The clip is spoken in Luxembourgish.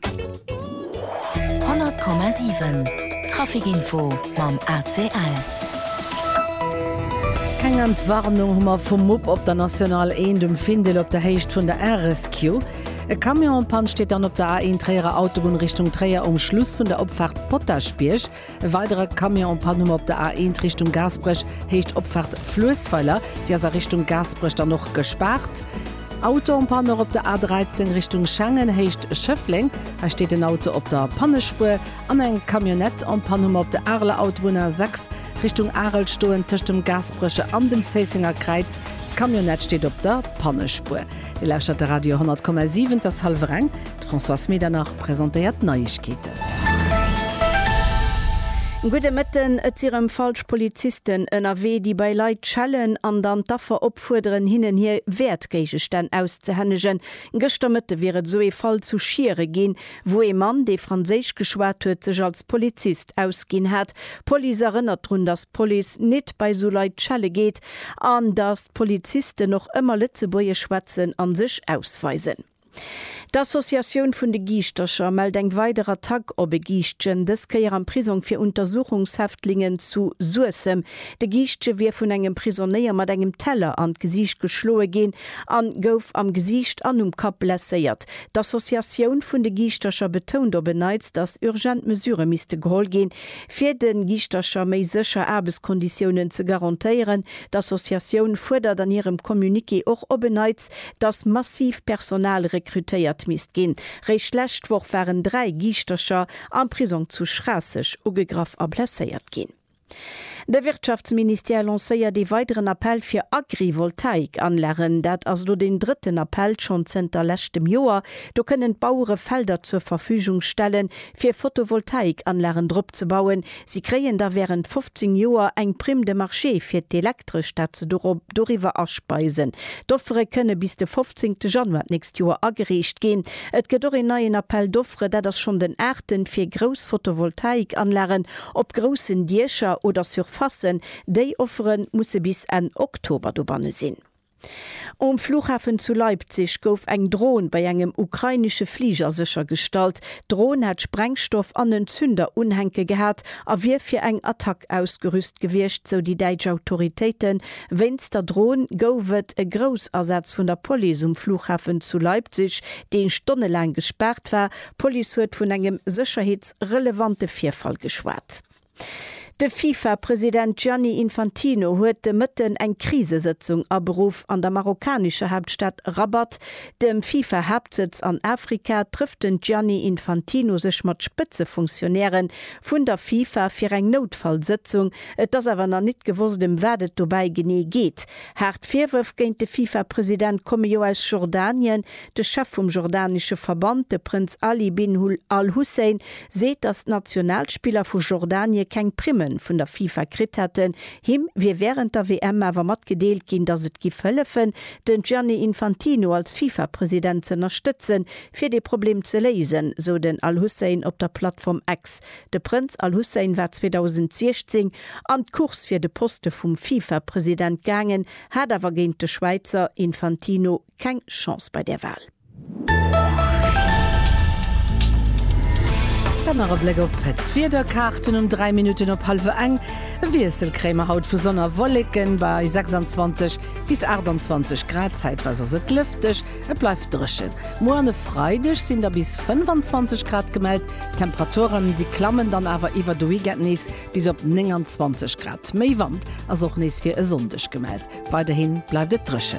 100,7 Trafic Info mam ACL. Keng Entwarnung hu mer vum Mupp op der National 1 um Findel op der Héicht vun der RSQ. E Camion en Panne steet dann op der A1 Tréierer Autobunn Richtung Tréier um Schluss vun der Opfaart Potaschbierg. E weidere Camion en panne um op der A1 Richtung Gaasperech, Héicht Opfahrt Fluessweiler. Déi ass a Richtung Gaasperech dann och gespaart. Auto en panne och op der A13 Richtung Schengen, Héicht Schëffleng. Hei steet en Auto op der Pannespuer. An eng Camionnette en panne um op der Areler Autobunn A6 Richtung Arel stoen. Tëscht dem Gaasperecher an dem Zéissenger Kräiz. D'Camionnette steet op der Pannespuer. Dir lauschtert de Radio 100,7. Et ass hallwer eng. D'Françoise Medernach presentéiert d'Neiegkeeten. Gudde Mëtten, Et si rëm falsch Polizisten ënnerwee, déi bei Leit schellen an dann d'Affer opfuerderen, hinnen hir Wäertgéigestänn auszehännegen. Gëschter Mëtte wier et esou ee Fall zu Schiere ginn, wou ee Mann, dee Franséisch geschwat huet, sech als Polizist ausginn hat. D'Police erënnert drun, datt d'Police nit bei esou Leit schelle geet an datt d'Polizisten och ëmmer Lëtzebuergesch schwätzen a sech ausweisen. D'Associatioun vun de Giischtercher mellt eng weider Attack op e Giischtjen, dës Kéier am Prisong fir Untersuchungshäftlingen zu Suessem. De Giischtje wier vun engem Prisonéier mat engem Teller an d'Gesiicht geschloe ginn a gouf am Gesiicht an um Kapp blesséiert. D'Associatioun vun de Giischtercher betount op en Neits, datt urgent Mesurë misste geholl ginn, fir de Giischtercher méi sécher Aarbechtskonditiounen ze garantéieren. D'Associatioun fuerdert an hirem Communiqué och op en Neits, dass massiv Personal rekrutéiert misst ginn. Réischt d'lescht Woch waren dräi Giischtercher am Prisong zu Schraasseg ugegraff a blesséiert ginn. De Wirtschaftsministère lancéiert ee weideren Appell fir Agrivoltaik-Anlagen. Dat ass elo deen drëtten Appell, schonn zënter leschtem Joer. Do kënnen d'Bauere Felder zur Verfügung stellen, fir Photovoltaik-Anlagen drop ze bauen, Si kréien da während 15 Joer eng Prime de marché fir d'Elektresch, dat se doriwwer aspeisen. D'Offere kënne bis de 15 te Januar d'nächst Joer agereecht ginn. Et gëtt och een neien Appel d'offres, dat ass schonn den aachten, fir grouss Photovoltaikanlagen op groussen Diecher oder Surfacen. Déi Offere musse bis Enn Oktober dobanne sinn. Um Flughafen zu Leipzig gouf eng Dron bei engem ukrainesche Fliger séchergestallt. D'Dron hätt Sprengstoff an en Zünder unhänke gehat a wier fir eng Attack ausgerüst gewiescht, sou déi däitsch Autoritéiten. Wéinst der Dron gouf et e Groussasaz vun der Police um Flughafen zu Leipzig, dee stonnelaang gespaart war. D'Police huet vun engem sécherheetsrelevante Virfall geschwat. De FIFA-President Gianni Infantino huet de Mëtten eng Krisesëtzung aberuff. An der marokkanescher Haaptstad Rabat, dem FIFA-Haaptsëtz an Afrika, trëfft den Gianni Infantino sech mat Spëtzefunktionäre vun der FIFA fir eng Noutfallsëtzung. Et ass awer nach nit gewosst, ëm wat et dobäi genee geet. Haart Virwërf géint de FIFA-President komme jo aus Jordanien, De Chef vum jordanesche Verband, de Prënz Ali bin Hul Al Hussein, seet, datt d'Nationalspiller vu Jordanie keng Primme vun der FIFA kritt hätten. Him wier wärend der WM awer matgedeelt ginn, datt et giff hëllefen, den Gianni Infantino als FIFA-President z'ënnerstëtzen, fir dee Problem ze léisen, sou den Al Hussein op der Plattform X. De Prënz Al Hussein war 2016 an d'Course fir de Poste vum FIFA-President gaangen, hat awer géint de Schwäizer Infantino. keng Chance bei där Wahl. Dann nach e Bléck op d'Wiederkaarten um 3 Minutten op hallwer eng. E Wiessel kréie mer haut vu Sonn a Wolleken bei 26 bis 28 Grad. Zäitweis ass et lëfteg, et bleift dréchen. Muer an e Freideg sinn da bis 25 Grad gemellt. D'Temperaturen, déi klammen dann awer iwwer de Weekend nees bis op 29 Grad. Méi Wand ass och nees fir e Sonndeg gemellt. Weiderhi bleift et dréchen.